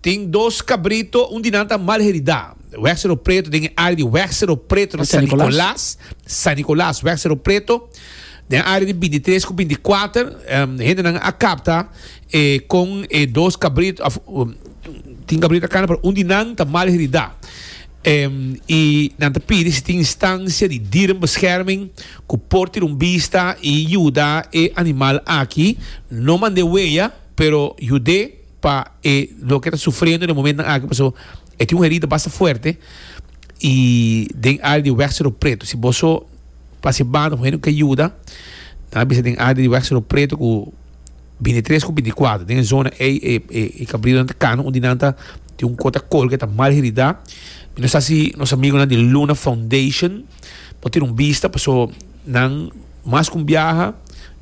Tin dos cabrito, un di nan ta mal heridá. Wèg Sero Preto, den e área di Wèg Sero Preto na San Nicolas, San Nicolas, Wèg Sero Preto, den área di bintitres ku bintikwater, hendenan a kapta kon e dos cabrito, òf, tin cabrito ta kana, pero un di nan ta mal heridá. I nan ta pidi si tin instancia di dierenbescherming ku por tira un bista i yuda e animal aki, no mand'é weya, pero yud'é. pa e loke ta sufriendo den momentonan aki paso e tin un herida basta fuerte y den área di wèg Seru Pretu si bo so pase banda hoen ku ke yuda nan a bisa den área di wèg Seru Pretu ku binti i tres ku binti i kuater den e zona ei e e kabriunan ta kana un di nan ta tin un kota kolga e ta mal heridá mi no sa si nos amigonan di Luna Foundation. Bo tin un bista paso nan mas ku un biaha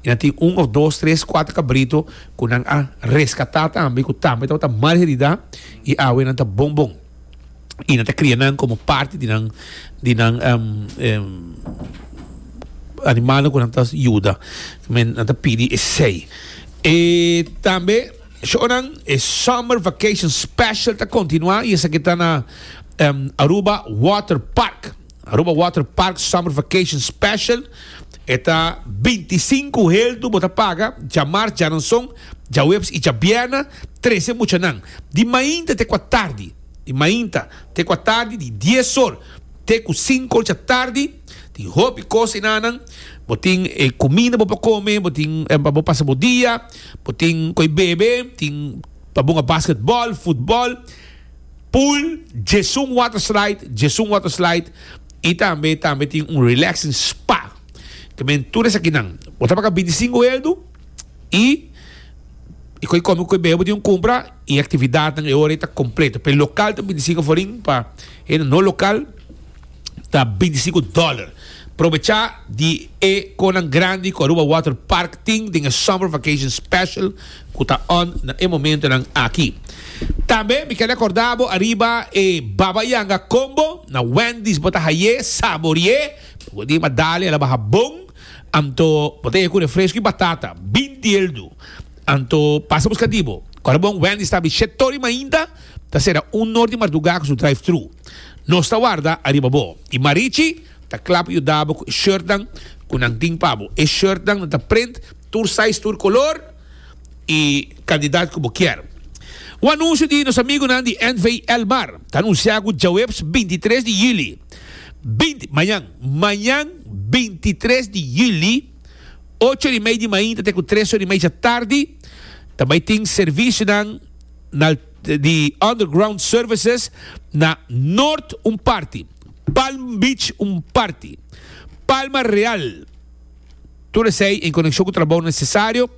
y nan tin un of dos, tres, kuater kabrito ku nan a reskatá tambe ku tambe tabata mal heridá y awe nan ta bon bon y nan ta kria nan komo parti di nan di nan animalnan ku nan ta yuda. Nan ta pidi esei. Tambe. Shonan, E Summer Vacation Special ta kontinuá i esaki ta na Aruba Water Park. Aruba Water Park Summer Vacation Special e ta binti i sinku heldu bo ta paga djamars, djananson, djaweps i djabièrnè trese muchanan di mainta te kua tardi di mainta te kua tardi di dies or te ku sinku or dja tardi tin hopi kos enanan bo tin kuminda bo por kome bo tin pa bo pasa bo dia. Bo tin koe bebe, tin pa bunga basketball, futbol, pool, Jesun Water Slide, Jesun Water Slide, y tambe tambe tin un relaxing spa. Ta bini tur esakinan. Bo ta paga bintisingu eldu y e koe come, koe bebe bo tin cumpra y e actividadnan e ora ei ta completo. Pe local ta bintisingu aforin, pa hende no local. ta bintisinco dollar. Probecha di e conan grandi cu Aruba Water Park tin den e Summer Vacation Special cu ta on na e momentonan aki. Tambe mi kel recorda bo ariba e Baba Yanga Combo na Wendy's bo ta haye, sabori'e, bo di ma dale ala baha bon, anto bo ta haye cu refresco y batata, binti eldu. Anto pasa busca di bo. Corebon Wendy's ta abi shetory mainta. Ta sera un nor di mardugá ku su drive-thru. Nos ta warda ariba bo. I Marichi ta kla pa yuda bo ku e shirtnan ku nan tin pa bo. E shirtnan nan ta print tur size, tur kolor i kantidat ku bo kier. Un anunsio di nos amigunan di NV. El Mar ta anunsiá ku djaweps binti tres di yüli, binti, mañan, mañan binti i tres di yüli, ocho ora i mei di mañan ta te ku tres ora i mei djatardi, ta bai tin servisionan na di Underground Services na Noord un parti, Palm Beach un parti, Palma Real, tur esei en konekshon ku trabou nesesario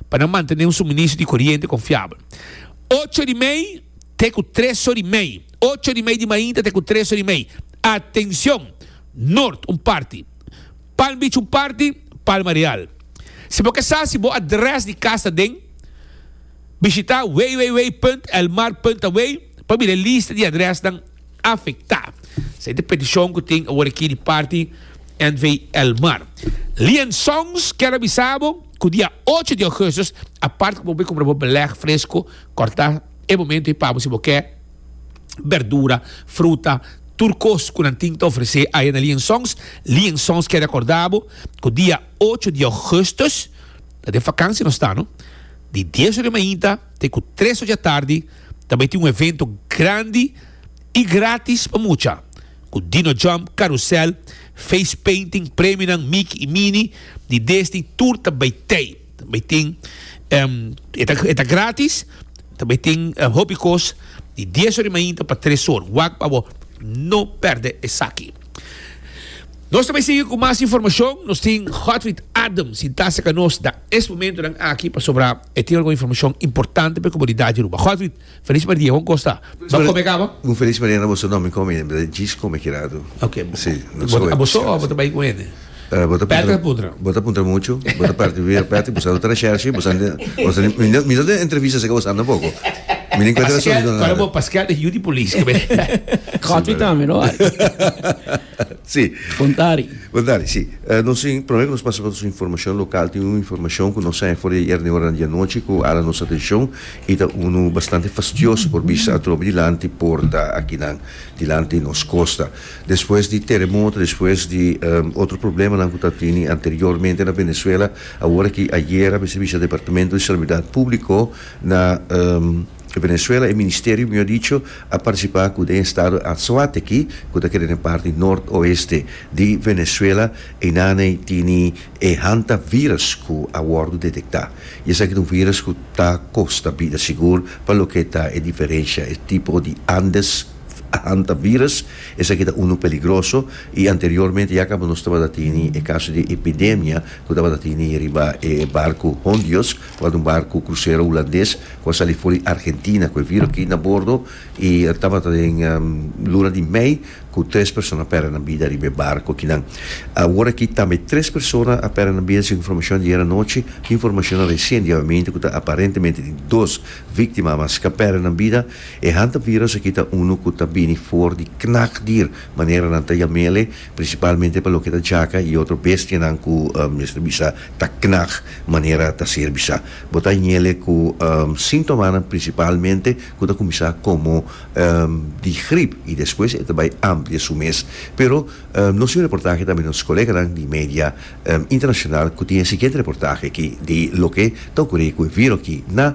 pa nan mantené un suministro di koriente konfiabel. Ocho di mei te ku tres or di mei, Ocho di mei di mainta te ku tres or di mei. Atenshon! Noord un parti, Palm Beach un parti, Palma Real. Si bo ke sa si bo adrès di kas ta den. Bishitá www.elmar.away pa mira e lista di adrèsnan afektá. Sa es di petishon ku tin awor aki di parti NV. El Mar. Lian Sons kier a bisa bo ku dia ocho di ougustus a parti ku bo bai kumpra bo belèg fresko, kòrtá e momentu ei pabo si bo ke bèrdura, fruta, tur kos ku nan tin ta ofresé aya na Lian Sons. Lian Sons kier rekordá bo ku dia ocho di ougustus ta den vakansia nos ta no. Di dies ora di mainta te ku tres ora dja tardi ta bai tin un evento grandi i gratis pa mucha, ku Dino Jump, Karusèl, Face Painting, premionan Miki i Mini di Desni tur ta bai tei. Ta bai tin e ta e ta gratis, ta bai tin hopi kos di dies ora di mainta pa tres ora. Wak pa bo no pèrdè esaki. Nos ta bai sigui cu mas informacion. Nos tin Godfrid Adam sintase ca nos na es momentonan aki pasobra e tin algun informacion importante pa e comunidad di Aruba. Godfrid, feliz mardia, bon cos ta? Bo come caba? Un feliz mañana a boso no, mi come, mi ta djis come kirato. Ok, bo ta bai cu hende? Bo ta puntra, bo ta puntra muchu, bo ta parti bibia prati, bo sa no ta na Shershi, bo sa no ta, mi no ta entrevista si ke bo sa no poko. Mi no encuentra razon di no nada. Paskel, Paskel e yu di polis ke b'e. Kotwi tambe no bai. Si. Puntari. Puntari, si. Nos, prome ku nos pasa pa nos informashon lokal, tin unu informashon ku nos sa for di ayer na e ora di anochi ku hala nos atenshon i ta unu bastante fastioso por bisa atrobe dilanti porta akinan, dilanti nos kosta. Despues di teremoto, despues di otro problemanan ku ta tini anteriormente na Venezuela, awor aki ayera mi Servicio Departamento di Salubridad Públiko na Venezuela, e Ministerio mihó dicho, a partisipá ku den estado Anzoátegui ku ta keda den parti nort-oeste di Venezuela, einan ei tini e hantavirus ku a wòrdu detektá. I esaki ta un virus ku ta kosta bida sigur pa loke ta e diferensha, e tipo di Andes, Hantavirus, esaki ta unu peligroso i anteriormente ya kaba nos tabata tini e kaso di epidemia ku tabata tini riba e barku Hondios, ku at un barku krusero hulandes ku a sali for di Argentina ku e viru aki na bordo i tabata den luna di mei ku tres persona a pèrdè nan bida riba e barku akinan. Awor aki tambe tres persona a pèrdè nan bida segun informashon di ayer anochi, informashonnan resien diabamente ku ta aparentemente tin dos víktimanan mas ku a pèrdè nan bida E hantavirus aki ta unu ku ta bini for di knakdier, manera nan ta yam'e ele, prinsipalmente pa loke ta jaka i otro bestianan ku mester bisa ta knak, manera ta ser bisa. Bo ta hañ'ele ku sintomanan prinsipalmente ku ta kuminsá komo di grip i despues e ta bai amplia su mes. Pero nos tin un reportahe tambe di nos koleganan di media internashonal ku tin e siguiente reportahe aki di loke ta okuré ku e viru aki na.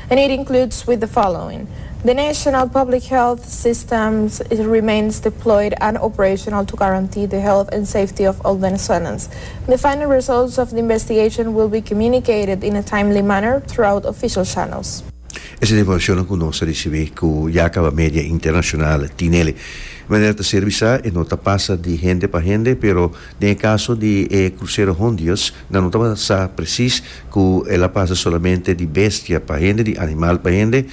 and it includes with the following, the national public health system remains deployed and operational to guarantee the health and safety of all Venezuelans. The final results of the investigation will be communicated in a timely manner throughout official channels. Esei ta informashonnan ku nos a risibí ku ya kaba media internashonal tin'e. Manera ta ser bisá e no ta pasa di hende pa hende pero Den e kaso di e krusero Hondius, nan no tabata sa presis ku el a pasa solamente di bestia pa hende, di animal pa hende,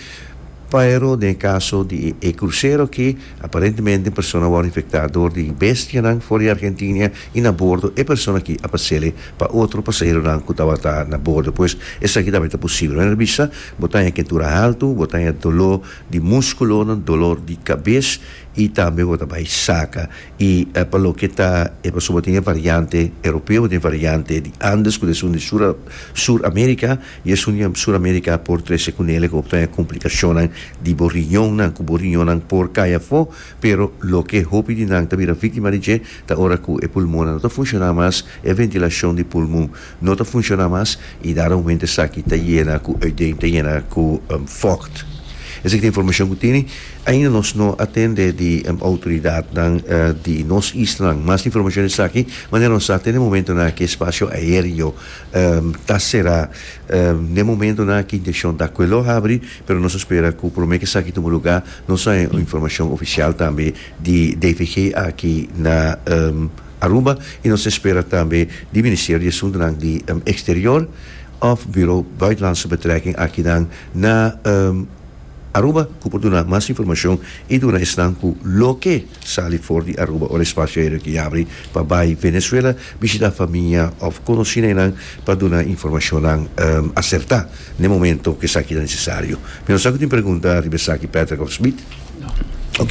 pero den e kaso di e krusero aki, aparentemente un persona a wòrdu infektá dor di bestianan for di Argentinia i na bordo e persona aki a pas'el pa otro pasaheronan ku tabata na bordo. Pues esaki tambe ta posibel. Mira na bista, bo ta haña kentura haltu, bo ta haña doló di múskulonan, dolor di kabes i tambe bo ta bai saka. I pa loke ta e pasobra tin e variante Europeo, tin e variante di Andes ku ta esun di Sur Sur Amerika, i esun di Sur Amerika por trese ku nel e hopinan e komplikashonnan di bo riñonnan, ku bo riñonnan por kai afó, pero loke hopi di nan ta bira víktima di dje ta ora ku e pulmonnan no ta funshoná mas, e ventilashon di pulmun No ta funciona mas y dada moment esaki ta yena cu uiteen ta yena cu fogt. Esaki ta informacion cu tene. Ainda nos no atende di autoridadnan di nos islanan. Mas informacion di esaki, manera nos sa tene momento nan aki e spacio aereo ta cera. N'e momento nan aki intencion ta cu e lo habri pero nos ta spera cu prome cu esaki tuma luga nos a informacion oficial tambe di DVG aki na. Aruba y nos ta spera tambe di Ministerio di Asuntonan di Exterior of Bureau Buitenlandse Betrekking akinan na Aruba cu por duna mas informacion y duna esnan cu loke sali for di Aruba ora e spacio aereo ke yabri pa bay Venezuela bishita famia of conocinennan pa duna informacionnan acerta n'e momento cu esaki ta necesario. Mi no sa cu tin pregunta riba esaki Patrick of Smith? No.